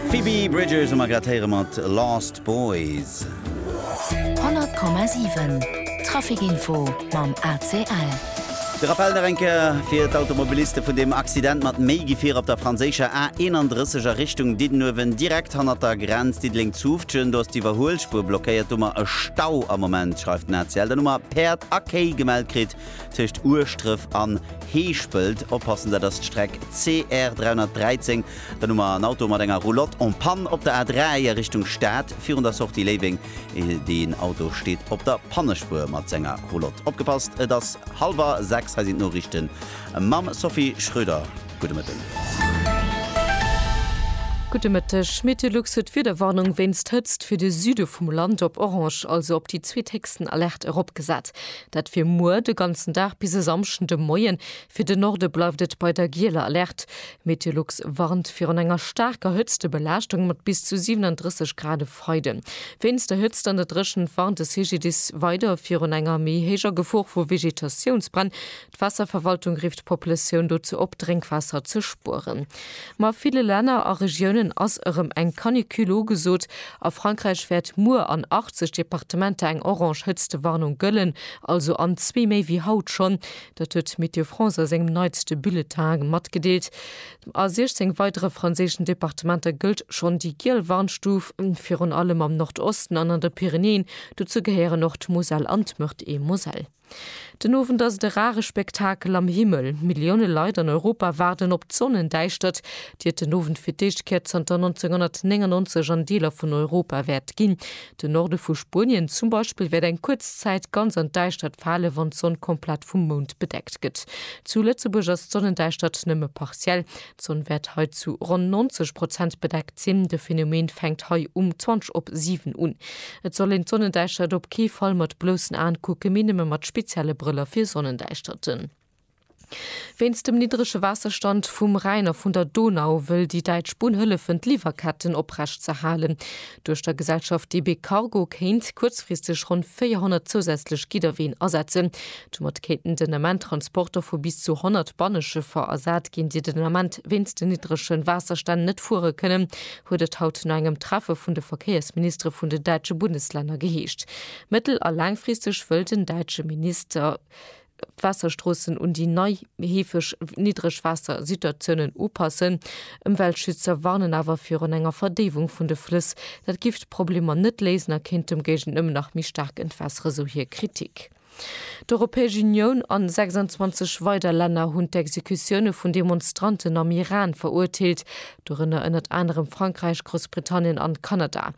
Phoebe Bridgers a Margret Heyre mat Lost Boys. 100,7 Traficinfo mam ACL. De Rappel nach eng Kéier fir d'Automobiliste vun deem Accident mat méi Gefier op der franséischer A 31 a Richtung Diddenuewen, direkt hannert der Grenz Diddeleng-Zoufftgen. Do ass d'Iwwerhuelspuer blockéiert, domat e Stau am Moment, schreift den ACL. Dann hu mer Päerd a Kéi gemellt kritt. Tëscht Ueschdref an Heeschpelt oppassen, dat ass d'Streck CR 313. Dann hu mer en Auto mat enger Roulotte en panne op der A3 a Richtung Stad virun der Sortie Léiweng. Deen Auto steet op der Pannespuer mat senger Roulotte. Opgepasst, et ass hallwer sechs. Hei sinn d'Noriichte mam Sophie Schröder. Gudde Mëtten. Gudde Mëtteg. Meteolux huet d'Wiederwarnung wéinst Hëtzt fir de Süde vum Land op orange, also op déi zweethéchsten Alerte eropgesat. Dat fir muer de ganzen Dag bis e Samschden de Moien. Fir de Norde bleift et bei der gieler Alerte. Meteolux warnt virun enger staarker Hëtztebelaaschtung mat bis zu 37 Grad e Freide. Wéinst der Hëtzt an der Dréchent warnt de CGDIS weider virun enger méi héijer Gefor vu Vegetatiounsbränn. D'Waasserverwaltung rifft d'Populatioun dozou op, Drénkwaasser ze spueren. Ma a ville Länner a Regiounen ass erëm eng Canicule ugesot. A Frankräich wäert muer an 80 Departementer eng orange Hëtztewarnung gëllen, also an zwee méi wéi haut schonn. Dat huet Météo France a sengem neitste Bulletin matgedeelt. A 16 weidere franséischen Departementer gëllt schonn déi giel Warnstuf, virun allem am Nordosten an an de Pyrenäen. Dozou gehéieren och d'Moselle an d'Meurthe-et-Moselle. Den Owend ass et e rare Spektakel am Himmel. Millioune Leit an Europa waarden op d'Sonnendäischtert, déi et den Owend fir d'éischt Kéier zanter 1999 an Deeler vun Europa wäert ginn. Den Norde vu Spuenien zum Beispill wäert eng kuerz Zäit ganz an d'Däischtert falen, wann d'Sonn komplett vum Mound bedeckt gëtt. Zu Lëtzebuerg ass d'Sonnendäischtert nëmme partiell. D'Sonn wäert hei zu ronn 90 Prozent bedeckt sinn. De Phenomen fänkt hei um 20 op 7 un. Et soll een d'Sonnendäischtert op kee Fall mat bloussen Aen kucken, mee nëmme mat spezielle Brëller fir Sonnendäischterten. Wéinst dem niddrege Waasserstand vum Rhäin a vun der Donau wëll déi däitsch Bunn hëllefen, d'Liwwerketten oprecht ze halen. Duerch der Gesellschaft DB Cargo kéint kuerzfristeg ronn 400 zousätzlech Gidderween asetzen. Domat kéinten den Ament Transporter vu bis zu 100 Banneschëffer ersat ginn, déi den Ament wéinst den niddregen Waasserstänn net fuere kënnen, huet et haut no engem Treffe vun de Verkéiersministere vun den däitsche Bundeslänner geheescht. Mëttel a laangfristeg wëll den däitsche Minister d'Waasserstroossen un déi nei, heefeg niddreg Waassersituatiounen upassen. Ëmweltschützer warnen awer virun enger Verdéiwung vun de Flëss. Dat giff d'Problemer net léisen a kéint demgéigent nëmmen nach méi staark entwässeren, sou hir Kritik. D'Europäesch Unioun a 26 weider Länner hunn d'Exekutioune vun Demonstranten am Iran verurteelt, dorënner ënnert anerem Frankräich, Groussbritannien an Kanada.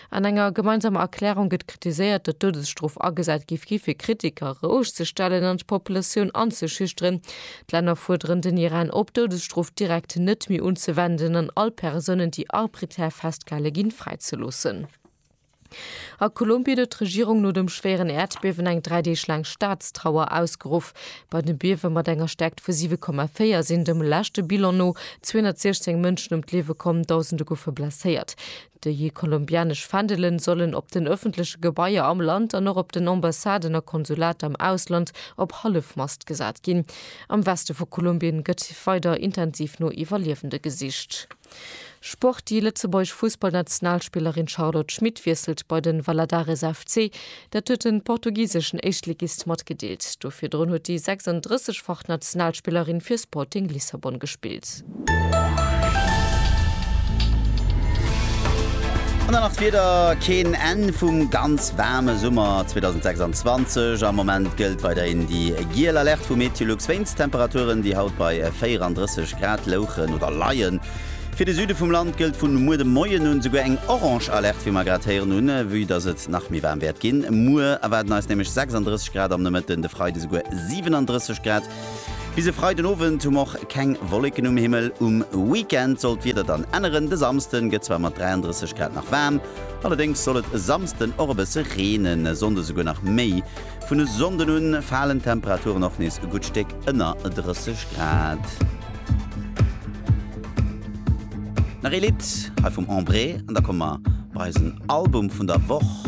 An enger gemeinsamer Erklärung gëtt kritiséiert, datt d'Doudesstrof agesat gi gi fir Kritiker roueg ze stellen an d'Populatioun anzeschüchteren. D'Länner fuerderen den Iran op, d'Doudesstrof direkt net méi unzewenden an all Persounen, déi arbiträr festgehale ginn, fräizeloossen. A Kolumbien huet d'Regierung no dem schwéieren Äerdbiewen eng dräi Deeg laang Staatstrauer ausgeruff. Bei dem Biewe mat enger Stäerkt vu 7,4 sinn dem leschte Bilan no 216 Mënschen ëm d'Liewe komm, Dausende goufe blesséiert. Déi kolumbianesch Fändele sollen op den ëffentleche Gebaier am Land an och op den Ambassaden a Konsulater am Ausland op Hallefmast gesat ginn. Am Weste vu Kolumbien gëtt weider intensiv no Iwwerliewende gesicht. Sport, Déi lëtzebuergesch Fussballnationalspillerin Charlotte Schmit wiesselt bei de Valadares FC. Dat huet de portugiseschen Éischtligist matgedeelt. Do virdrun huet déi 36-fach Nationalspillerin fir Sporting Lissabon gespillt. An dann nach d'Wieder, Keen Enn vum ganz waarme Summer 2026. Am Moment gëllt weiderhin déi giel Alerte vu MeteoLux wéinst Temperaturen, déi haut bei 34 Grad louchen oder leien. Fir de Süde vum Land gëllt vun muer de Moien un esouguer eng orange Alerte, wéi mer grad héieren hunn. Vue dass et nach méi waarm wäert ginn, muer erwaarden eis nämlech 36 Grad am Nomëtten, de Freide esouguer 37 Grad. Bis e Freiden Owend hu mer och keng Wolleken um Himmel. Um Weekend soll d'Wieder dann änneren, de Samsden gëtt zwar mat 33 Grad nach waarm, allerdéngs soll et e Samsden och e bësse reenen, e Sonnde souguer nach méi. Vun e Sonnden un falen d'Temperaturen och nees e gutt Stéck ënner 30 Grad. Nach ee Lidd hei vum Embrée an da komme mer bei eisen Album vun der Woch.